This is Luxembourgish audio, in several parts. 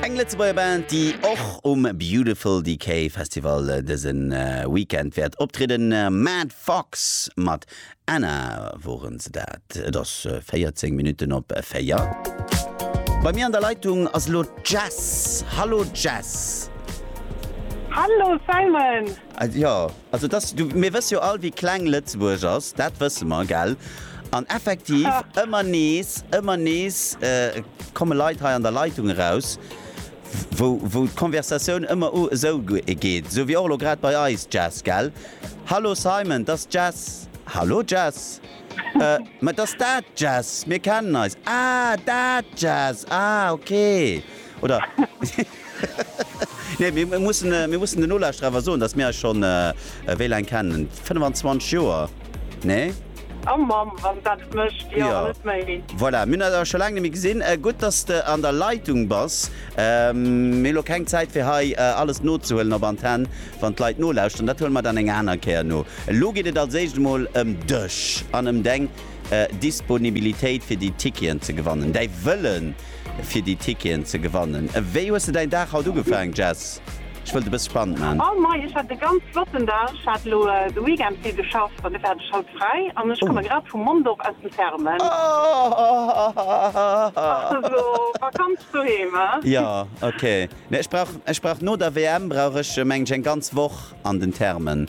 Eng Lëtzebuerger Band, déi och um Beautiful Decay Festival dëse Weekend wäert optrieden. Mad Fox mat Anna woren se dat. Et ass 14 Minutten op 4. Bei mir an der Leitung ass elo d'Jess. Hallo Jess! Hallo Simon! Jo, Also et ass, du, mir wësse jo all, wéi kleng Lëtzebuerg ass, dat wësse mer, gell? An effektiv, ëmmer nees, ëmmer nees komme Leit hei an der Leitung eraus, wou, wou d'Konversatioun ëmmer esou geet, esou wéi och elo grad bei eis, Jess, gell? Hallo Simon, t'ass d'Jess. Hallo Jess. Äh, ma t'ass dat d'Jess, mir kennen eis. Ah, dat d'Jess, ah, okay. Oder. Nee, mir mussen den Nolauschterer awer soen, datt mir eis schonn, wéi laang kennen? 25 Joer, nee? A Mamm, wann dat et mécht, jo, net méi. Voilà, mir hunn eis awer scho laang net méi gesinn. Gutt, datt s de an der Leitung bass. Mir hu lo keng Zäit, fir hei alles nozehuelen op Antenn, wann d'Leit nolauschteren. Dat huele mer dann eng aner Kéier no. Elo geet et als éischt emol ëm dech an ëm deng Disponibilitéit, fir déi Ticketen ze gewannen, däi Wëllen, fir déi Ticketen ze gewannen. Wéi hues de däin Dag haut ugefaang, Jess? Ech wëll et e bësse spannend man. Moin moin, ech hat e ganz flotten Dag. Ech hat elo de Weekend vill geschafft an dofir hat ech haut fräi an ech komme grad vum Mondorf aus dem Therme. Ach esou Vakanz doheem, he? Jo, ok. Ech brauch no der WM brauch ech mengen ech eng ganz Woch an den Thermen.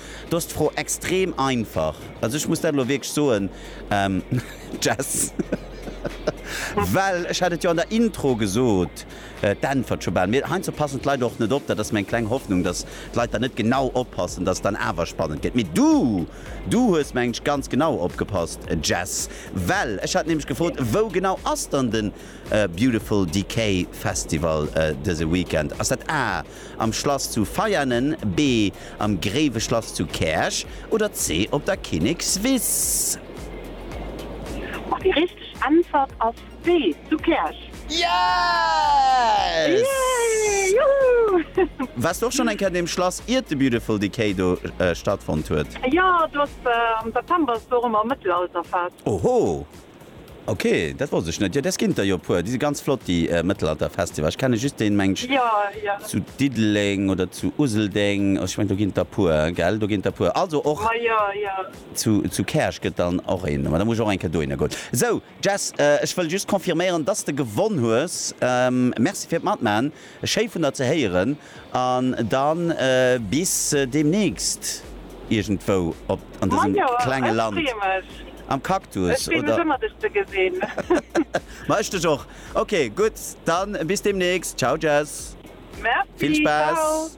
Do ass d'Fro extrem einfach. Also ech muss dat elo wierklech soen, Jess, well ech hat et jo an der Intro gesot, d'Äntwert scho bal. Mee heiansdo passen d'Leit och net op. Dat ass meng kleng Hoffnung, dass d'Leit dann net genau oppassen, dass et dann awer spannend gëtt. Mee du, du hues, mengen ech, ganz genau opgepasst, Jess, well ech hat nämlech gefrot, Wou genau ass dann de Beautiful Decay Festival dëse Weekend? Ass dat A, am Schlass zu Veianen, B, am Gréiweschlass zu Käerch oder C, op der Kinnekswiss? An déi richteg Äntwert ass B, zu Käerch. Yes! Yay! Juhu! Wars du och schonn eng Kéier an deem Schlass iert de Beautiful Decay do stattfonnt huet? Jo, do ass am September ass do och ëmmer Mëttelalterfest. Oho! Ok, dat wosst ech net. Jo des gin der jo e puer, déi si ganz flott déi Mëttelalter Festival. Ech kenne just deen mengt ech zu Diddeleng oder zu Useldeng. Ech mengt do gin der puer gell, do gin der puer. Also och zu Käerch gëtt dann och een, ma da muss ech och eng Kéier dohinner goen. Sou Jess, ech wëll just confirméieren dass de gewonn hues. Merci fir d'Matmaachen. Schéi vun der ze héieren an dann bis demnächst irgendwou op an desem klenge Land am Cactus oder? Ma ech dech och. Ok gutt dann bis demnächst ciao jess vill Spass.